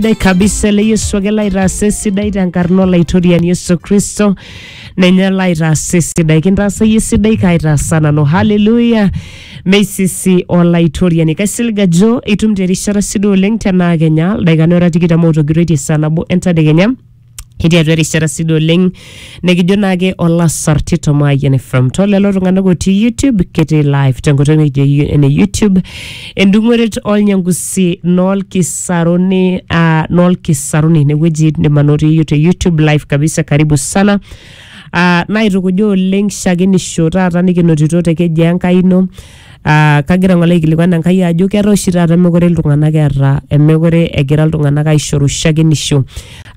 Sidai kabisa ele Yesu ake laitaasa esidai tenkarna olaitoriani Yesu Kristo ninye laitaasa esidai kintaasa iyie esidai kaitaasa nanu haleluya meisisi olaitoriani kaisilig ajo itum terishata sidai oleng tenaa kenya ildaikani ora tikitam otogiroitie saa nabo entadekenya Etii atua erishata sidai oleng nikijo naake olasarti tomayian from to lelo tung'anak otii YouTube ketii live tenkoitoi nikijo yu- ene YouTube endung'oret olnyangusi nolkisaruni uh, nolkisaruni inewueji indim anotie te YouTube live kabisa karibu sana uh, naitukuja oleng shakenisho taata nikinotito te keji Enkai ino Ah, kagira ng'ole aikilikuan Enkai ajo ketaa oshi taata mekure iltung'anak eeta mekure egira iltung'anak aishoru shakenisho.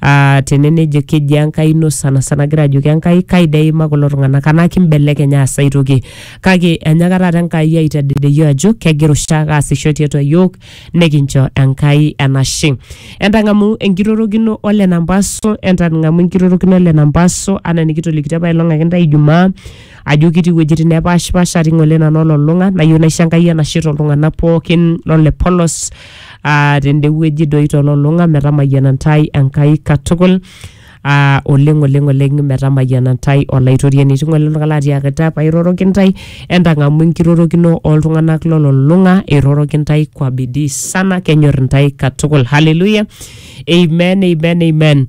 Ah, tene nejo keji Enkai ino sanasana agira ajoki Enkai kai dee eimaa kulo tung'anak anaa kimbelekeny aas ai toki. Kake enyaaka taata Enkai aitadedie iyiok ajo kegira oshiake aasisho tiatua iyiok nekincho Enkai enashe. Entang'amu enkirorokino o Lena mpaso, entang'amu enkirorokino o Lena mpaso anaa enikitolikitio apailong ake intae ijumaa. ajo ketii iwuejitin nepaashipasha atii ng'ole nanu olulung'a nayieu naisho Enkai enashe toltung'anak pookin lole polos ah, tende wueji doi tolulung'a metamayiana ntae Enkai katukul ah, oleng oleng oleng metamayiana ntae olaitoriani etii ng'ole oltung'ani latiakita pairoroki ntae entang'amu enkirorokino oltung'anak lolulung'a eiroroki ntae kwa bidii sana kenyor ntae katukul haleluya amen amen amen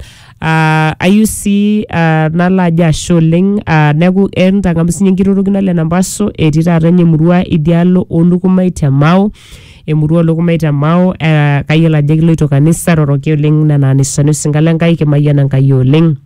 Ah, ayieu sii ah, nalo ajo ashe oleng ah, neeku eh, ntang'amu sinye enkirorokino ale nampaso etii taata ene murua idialo olukumai te Mao emurua olukumai te Mao eh, kayiolo ajo kiloito kanisa roroki oleng nena anisani osinka le Nkai kimayian Enkai oleng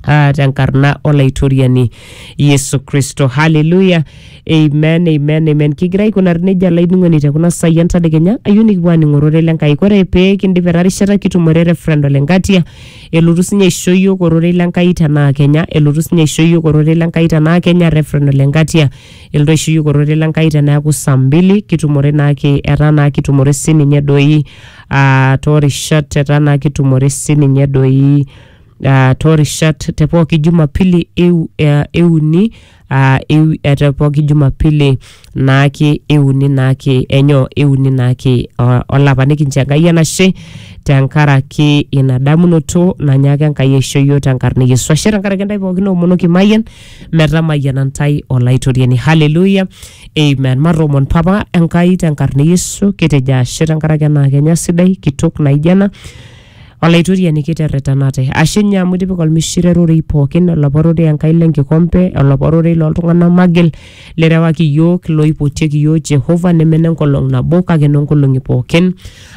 ah, tenkarna olaitoriani Yesu Kristo haleluya Amen, amen, amen. Kigira aikunari nejia lainining'oni te kuna saai entadekenya ayieu nikipuo aaning'o ororei le Nkai. Ore pee kindip ena rishata kitumore Reverend Ole Ngatia elotu sinye aisho iyiook ororei le Nkai tenaa Kenya, elotu sinye aisho iyiook ororei le Nkai tenaa Kenya Reverend Ole Ngatia elotu aisho iyiook ororei le Nkai teneeku saa mbili kitumore naake etaa naa kitumore sininye doi ah, toorishat etaa naa kitumore sininye doi ah, toorishat te pooki jumapili eu- eh, euni uh, ewi, ete pooki jumapili naake euni naake enyo euni naake uh, olapa nikincho enkai enashe tenkaraki ina damunoto nanyaaka enkai aisho yiok tenkarna e yesu ashe tenkaraki intae pookin oomonoki mayian metamayiana ntae olaitoriani haleluya amen matoomon papa enkai tenkarna e yesu kitejo ashe tenkaraki ena kenya sidai kitok naijo ena Olaitoriani kiterretenate. Ashe ninye amu itipika olmishire rorei pookin, olapa rorei Enkai lenkikompe, olapa rorei looltung'anak magil, lirewaki iyiook, loipotieki iyiook Jehova, neme nenkolong nabo kake noonkolong'i pookin.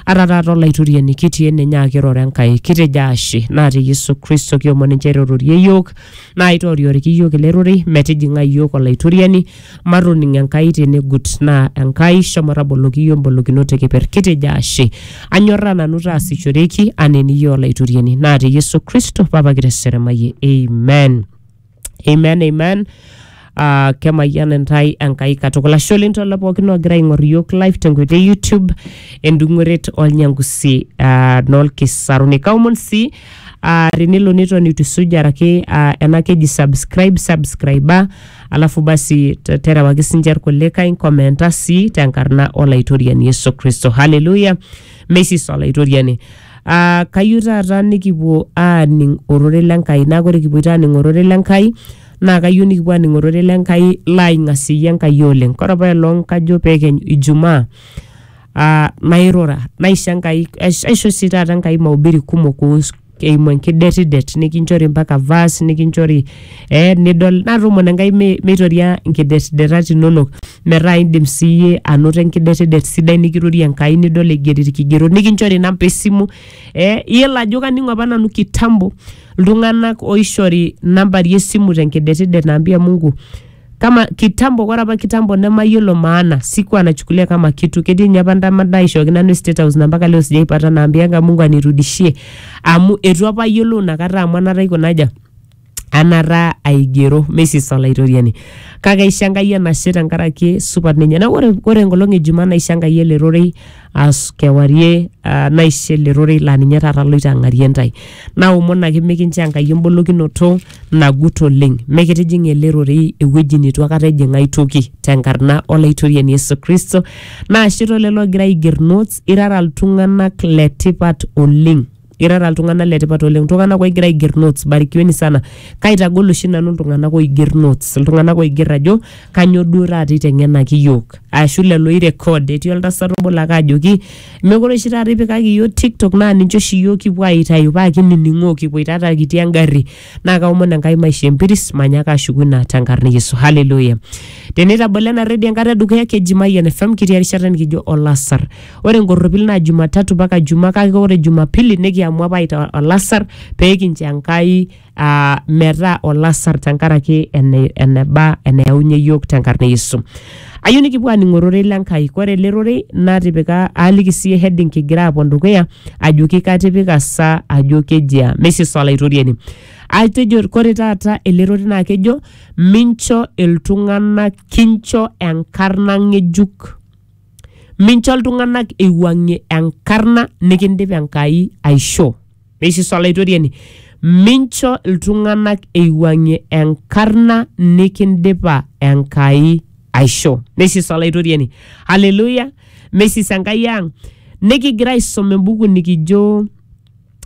Ata taata Olaitoriani kitii ene nyaaki iroro Enkai. Kitejo ashe. Naa te Yesu Kristo kiomon injere irorie iyiook, Naa aitorioriki iyiook ele rorei metijing'a iyiook olaitoriani, matoning Enkai tenegut. Naa Enkai shomo taboloki iyiook mbolokinot e keper. Kitejo ashe. Anyorraa nanu taasishoreki anaa eniyieu olaitoriani. Naa te Yesu Kristo, Papa kiteseremayie. Amen. Amen, amen. uh, kemayian intae enkai katukul ashe oleng tolo pookin ogira aing'or iyiok live tenkoitoi e youtube endung'oret olnyangusi uh, noolkisaruni kaomon sii uh, tenelo neton itu isuj araki uh, ena keji subscribe subscriba alafu basi te- terewaki sinche irkulikae nkomenta sii tenkarna olaitoriani yesu kristo haleluya meisis olaitoriani Uh, kayieu taata nikipuo aaning ororei le Nkai naa ore kipuoito aaning ororei le Nkai naa kayieu nikipuo aaning ororei le Nkai laaing'asieyie Enkai oleng. Kore apa elong kajo peekeny ijumaa aa nairura naisho Enkai aisho sii taata Enkai mahubiri kumok kuhusu eimu enkidetidet nikinchori mpaka verse nikinchori eh nidol natoomono Enkai mi- meitoria nkidetidetat inonok metaa indim siiyie anoto enkidetidet sidai nikirorie Enkai nidol eigeri ilkigerot nikinchori inamba e simu eh iyiolo ajo kaning'o apa nanu kitambo iltung'anak oishori nambari esimu tenkidetidet naambia Mungu kama kitambo ore apa kitambo nemayiolo maana sikuwa nachukulia kama kitu ketii ninye apa ndama naishooki nanu state house na mpaka leo sijaipata naambianga Mungu anirudishie amu etu apa ayiolou inakata amu anata aikuna aja anata aigero mesis olaitoriani kake aisho enkai enashe tenkaraki supat ninye na ore, ore enkolong e jumaa naisho enkai ele rorei as kewarie ah, naisho ele rorei laa ninye taata aloito ang'arie ntae naomon ake mikincho enkai embolokinoto nagut oleng mikitijing ele rorei ewueji neitu akata ejing ai toki tenkarna olaitoriani yesu kristo naashe tolelo ogira aiger notes irara iltung'anak letipat oleng irara iltung'anak letipat oleng iltung'anak oigira aiger notes barikiweni sana kaitagol oshi nanu iltung'anak oiger notes iltung'anak oiger ajo kanyoo duo taata iteng'enaki iyiok ashu lelo oirecord etii oltasat obo lake ajoki mekure oshi taata ipikaki iyiok tiktok naa ninche oshi iyiok kipuo aitayu paa kinining'oo kipuoitata kitii engarri naa kaomon Enkai maisho empiris manyaaka ashuku ina tenkarna e Yesu. Haleluya. Teneitabolo ena redio enkata edukuya keji Mayian FM kitii erishata nikijo olasar. Ore enkorropil naa Jumatatu mpaka Jumaa kake ore Jumapili nikiamua apa aita olasar pee kincho Enkai aa metaa olasar tenkaraki ene eneba eneyaunye iyiook tenkarna e Yesu. Ayieu nikipuo aaning ororei le Nkai. Ore ele rorei natipika aaliki sii heading kigira apuo dukuya ajoki katipika sa ajo kejia. Meisisa Olaitoriani. Atejo ore taata ele rorei naa kejo mincho iltung'anak kincho enkarna ng'ejuk. Mincho iltung'anak eiwuang'ie enkarna nikindipa Enkai aishoo. Neisisu Olaitoriani, Mincho iltung'anak eiwuang'ie enkarna nikindipa Enkai aisho. Neisisu Olaitoriani, Haleluya! Meisis Enkai ang'. Nikigira aisum embuku nikijo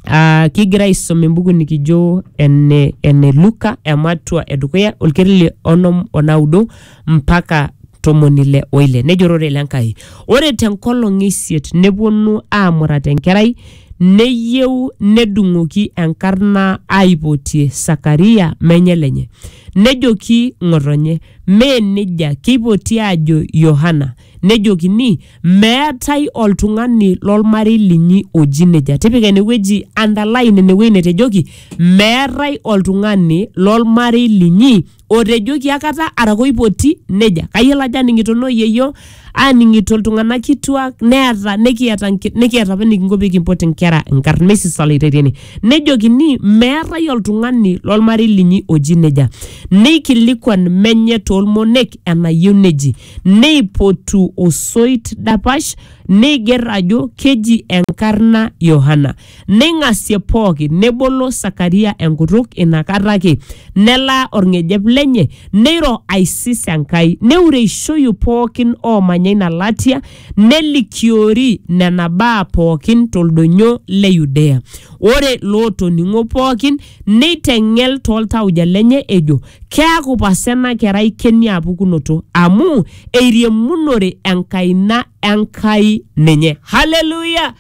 Ah, kigira aisum embuku nikijo ene, ene Luka ematua edukuya olkeri le onom onaudo mpaka tomoni ile oile nejo ororei le Nkai ore tenkolong e isiet neponu aamurat enkerai Neyieu nedung'oki enkarna aipotie Sakaria menye lenye. Nejoki ng'otonye, Mee neija, keipoti aajo Yohana. Nejokini, Meetae oltung'ani lolmarei linyi oji neija. Tipika ene wueji, underline ine wueji netejoki, Meetae oltung'ani lolmarei linyi otejoki akata araka oipoti neja kayiolo ajo aning'ito noo yieyio aaning'ito iltung'anak kituak neeta nikiata nki- nikiata apa enikinko pee kimpot inkera inkarn meisisa olaitariani nejokini meetae oltung'ani lolmarei linyi oji neja neikilikuan menye toolmonek enayieu neji neipotu osoit dapash neiger ajo keji enkarna Yohana Neing'asie pooki, nebolo Sakaria enkutuk ina kata ake, nelaa olng'ejep lenye, neiro aisis Enkai, neureishoyu pooki oomanya ina latia, nelikiori nena baa pooki to ldonyo le Yudea. Ore lootoning'o pooki neiteng'el too ltauja lenye ejo, Keaku pasa ena kerai kenia pukunoto, amu eiriamunore enkaina e Nkai ninye. Haleluya!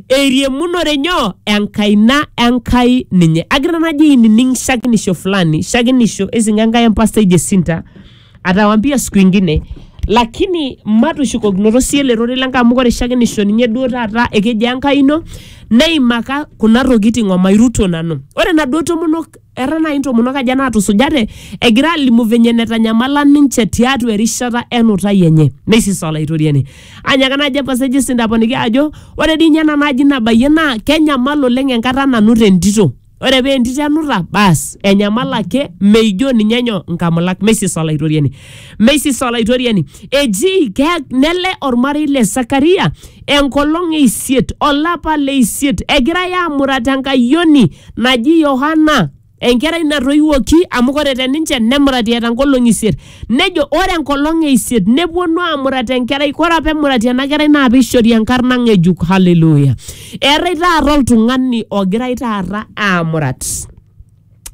eiriamunore nyoo enkaina enkai ninye agira najo ainining shakinisho fulani shakinisho esinga enkai empastai jesinta atawambia siku ingine lakini matushukokinoto sii ele rorei lenkai amu ore shakinisho ninye duo taata ekeji enkai ino neimaka kuna tokiting omairuto nanu ore naduo tomonok Era naaji intomonok aja naatusujate egira alimu venye netanyamala ninche tiatua erishata enutai enye. Neisisa Olaitoriani. Anyaka naaji epaseji sindaponiki ajo ore dii ninye ena naaji nabayie naa kenyamal oleng enkata nanut entito. Ore paa entito enuta baas enyamal ake meijo ninye nyoo nkamulak. Meisisa Olaitoriani. Meisisa Olaitoriani. Eji nele ormarei le Sakaria enkolong e isiet olapa le isiet egirai aamurat enkayioni naji Yohana enkerai natoiwuoki amu ore te ninche nemurati eeta nkolong'i isiet nejo ore enkolong e isiet nepuonu aamurat enkerai ore apa emurati ena kerai naa piishori enkarna ng'ejuk haleluya eetae taata oltung'ani ogirai taata aamurat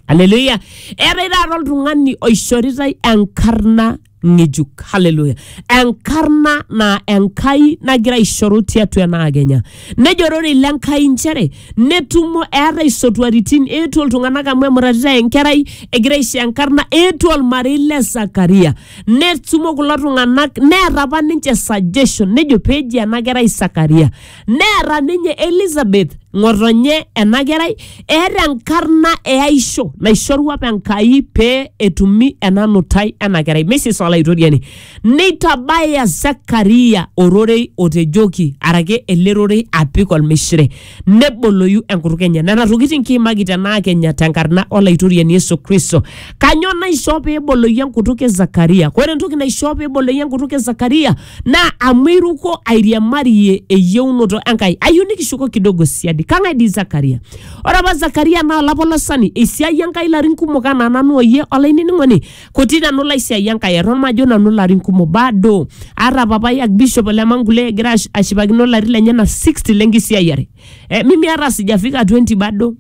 haleluya eetae taata oltung'ani oishoritae enkarna ng'ejuk haleluya enkarna naa enkai nagira aishoru tiatua ena akenya nejo ororei le nkai nchere netumo eetae isotuaritin eetuo iltung'anak amu emuratitae enkerai egira aisho enkarna eetuo olmarei le sakaria netumo kulo tung'anak neeta apa ninche suggestion nejo peji ena kerai sakaria Neeta ninye Elizabeth ng'otonye ena kerai eeta enkarna eaisho naishorua apa Enkai pee etumi ena nutai ena kerai. Mrs. Olaitoriani. Neitabaya Zakaria ororei otejoki araki ele rorei apik olmishire neboloyu enkutuk enye. Nena tokitin kiimaki tenaa Kenya tenkarna Olaitoriani Yesu Kristo. Kanyoo naishoo pee eboloyu enkutuk e Zakaria? Ore entoki naishoo pee eboloyu enkutuk e Zakaria naa amu iruko airiamarie eyieunoto Enkai. Ayieu nikishuko kidogo siadi. Kang'ae dii Zakaria? Ore apa Zakaria naa olapolosani, eisiayie Enkai ilarin kumok anaa nanu oyie olainining'oni kuti nanu laisiayie Enkai eton majo nanu ilarin kumok bado. Aata papai Archbishop le Mangulee egira ash- ashipakino ilarin lenyena 60 le nkisiayiare. Eh, mimi hata sijafika 20 bado.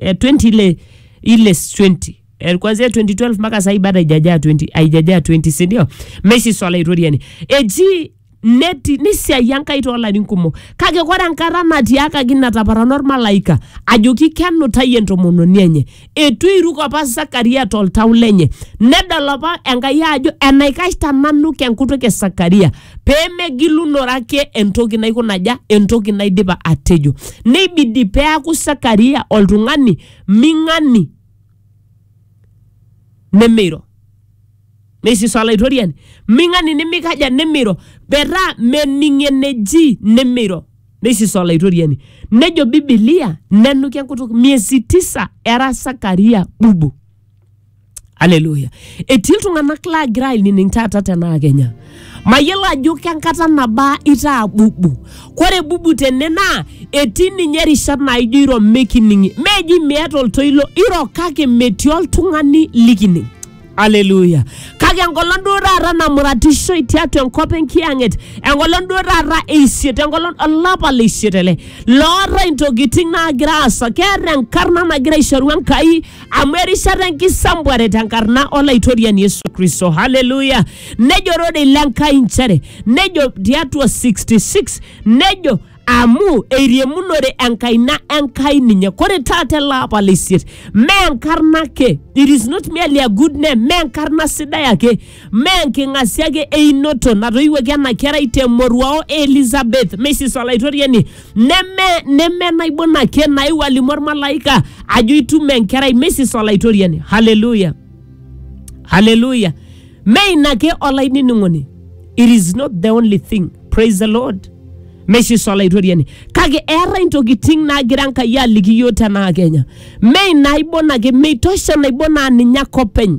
Eh, 20 ile ile 20. eh, kuanzia 2012 mpaka sahii bado haijajaa 20 haijajaa 20 si ndio meshi swala itoriani eji neti nisiai enkai toolarin kumok kake kore enkata natiakaki nataparana ormalaika ajoki kenutayie entomononi enye etu eiruk apa sakaria toltau lenye nedol apa enkai ajo enaikash tananu kenkutuk e sakaria peemegilunore ake entoki naikunaja entoki naidipa atejo neibidi peaku sakaria oltung'ani ming'ani nimiro neisiso olaitoriani ming'ani nimikaja nimiro metaa mening eneji nimiro neisiso olaitoriani nejo bibilia nenuki enkutuk miezi tisa era sakaria bubu aleluya etii iltung'anak laagira ainining taata tenaa kenya Mayiolo ajo kenkata nabaa itaa bubu. Kore bubu tene naa etii ninye rishat naaijo iro mikining'. Meeji miata oltoilo, iro kake metii oltung'ani likining'. Hallelujah. Kake enkolong duo taata namuratishoi tiatua enkop enkiyang'et, enkolong duo taata e isiet, enkolong olapa le isiet ele, lootae intokitin naagira aasa, keeta enkarna nagira aishoru Enkai amu erishata enkisambuare tenkarna olaitoriani yesu kristo haleluya nejo rorei le nkai nchere nejo tiatua 66 nejo amu eiriamunore enkaina enkai ninye kore taata ele apa le isiet mee enkarna ake it is not merely a good name mee enkarna sidai ake mee enking'asia ake einoto natoiwuoki ena kerai temoruao e elizabeth meisis olaitoriani neme neme naibon ake naewuo alimu ormalaika ajo itum enkerai mesis olaitoriani haleluya haleluya me ina ake olainining'oni it is not the only thing praise the lord mesis olaitoriani kake eetae intokitin naagira enkai aliki yiok tenaa kenya me inaibon ake meitosha naibon aa ninye ake openy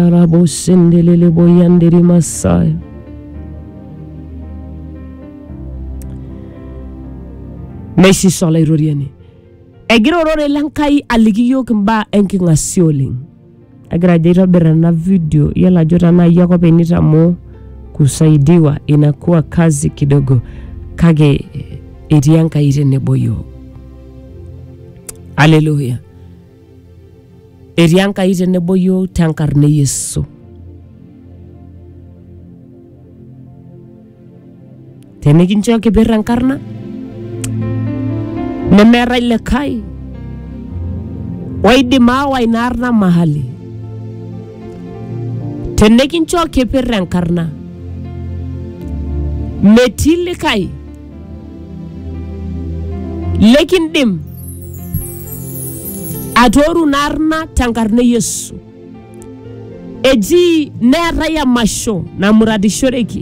Rikayandaraboshendelele boyandere masaya. Neishisho olairoriani. Egira orore le Nkai aliki iyiook imbaa enking'asia oleng. Agira ajo aitobir ena video iyiolo ajo tenaa iyie ake openy nitamoo kusaidiwa inakuwa kazi kidogo kake etii Enkai tenebo iyiook. Haleluya. Etii Enkai tenebo yiok tenkarna e Yesu. Tenikincho kipir enkarna nemeetae likae oidim aawa ina arna mahali. Tenikincho kipir enkarna metii likae Likindim atooru ina arna tenkarna e Yesu. Eji neetae emasho namuratishoreki